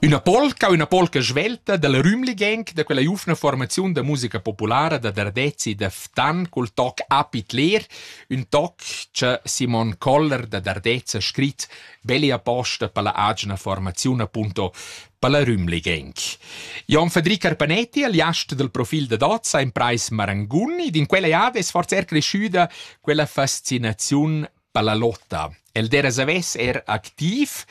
Üna polca üna polca svelta da la Rümligen da quella giuvna formaziun da musica populara da Dardezi da Ftan cul toc Apit Leer, ün toc cha Simon Koller da Dardez ha scrit belli aposta per la agina formaziun appunto per la Rümligen. Jon Federic Arpanetti, aliast del profil da Dozza in Preis Marangun, ed in quella jada es forse er cresciuda quella fascinaziun Pallalotta. El dera savess er activ.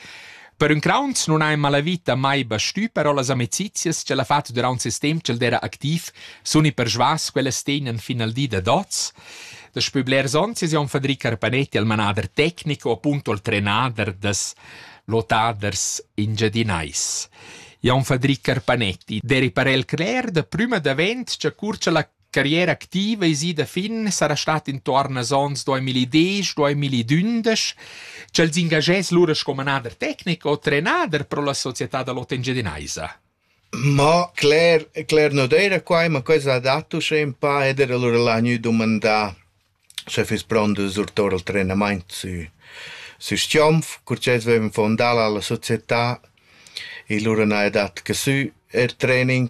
Per ün crauns non ha in malavita mai bastü, però las amecizias ch'el ha fat durant ses temp ch'el dera activ sun i persvas ch'ellas tegnan fin al di da dots. Daspö blers ons es Jon Fadri Carpanetti il manader tecnic o appunto il trenader das lottaders engiadinais. Jon Fadri Carpanetti deri parel cler da prüma davent cha cur cha la carriera activa es ida fin, sarà stat intuorn als ons 2010, 2012, ch'els ingagess lura sco manader tecnic o trenader pro la società da l'Hotel Engiadinaisa. Ma Claire, Claire non era qua, ma questa ha dato sche un pa ed era lura l'ha gnü dumandà se fis pront de surtor al trenament su su Stiomf, cur che avevamo fondato la società e lura na è dat che su er training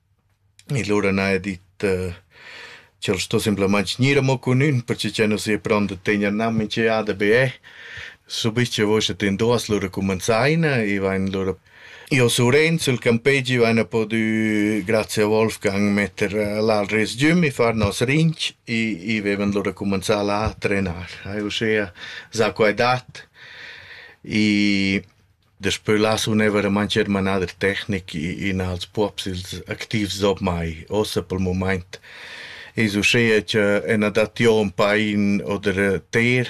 E lura n'haja dit ch'el sto simplamaing gnir amo cun ün perche ch'el nu s'ie pront da tegner gnanc minch'eada be eh. Subich che voust at indoss lura cumanzaina e vain lura... Io su Renzo, il campegi, vaina podü grazia a Wolfgang metter là al resgüm e far nos rinch e vevan lura cumanzà là a trenar. Haja uschea za quai dat e Daspö là sun eir vairamaing chermanà da tecnic in als puobs ils activs ormai. Uossa pel mumaint es uschea cha ün adattà ün pain oder ter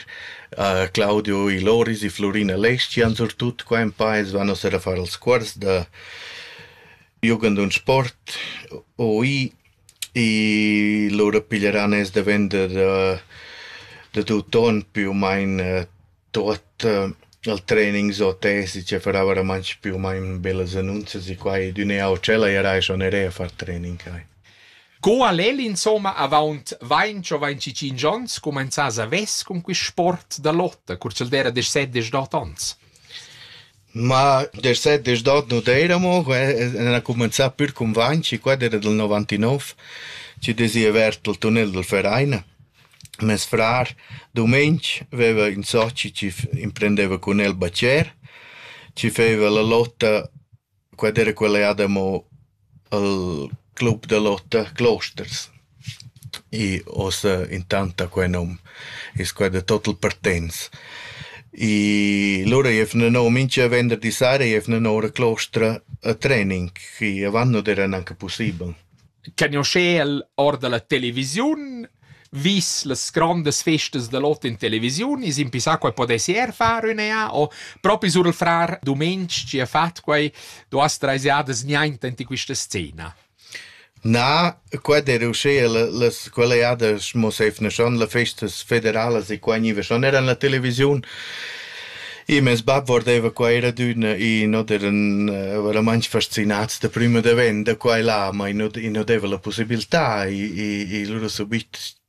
a Claudio i Loris i Flurina Leschi an surtut qua ün pa, els van uossa a far els cuors da jugend und sport OI i lura piglieran els da vender da tut on, più u main Tuot il training sco tesi che farà vairamaing più u main bellas annunzias e quai d'ün e auter. Ella era eir schanerei a far training quai. Co al el insomma avaunt vainch o vainch tschinch ons cumainzas a vess cun quist sport da lotta cur ch'el d'eira desch set desch dot ons? Ma desch set desch dot nu d'eiramo, ena cumanzà pür cun Vanci, quai d'eira dal novantanove, chi'd es i avert al tunnel dal Verein. Mes frar dumeng veva ün soci chi emprendeva cun el bacher, chi feva la lotta, quella era quella jada amo al club da lotta Closters. I ossa intant ha quel nom, es quai da tot il Partenz. I lura i evna no mincha venderdi sera i evna no ora Clostra a training, chi avant non eran anche pussibel. Cagnuoschel or da la televisiun, vis las grondas festas da l'ot in televisiun, es impissà quai podess eir far üna eà o propi sur il frar Dumeng chi ha fat quai duas trais jadas niainta int in quista scena. Na, quai d'eira uschea las quelle jadas mo s'eivna schon las festas federalas e qua gniva schon eir in la televisiun. E mes bab guardeva qua er adüna e not eran eh, veramaing fascinats da prüm ed avant da qua e là, ma i not i not deva la pussibiltà e e e lura subit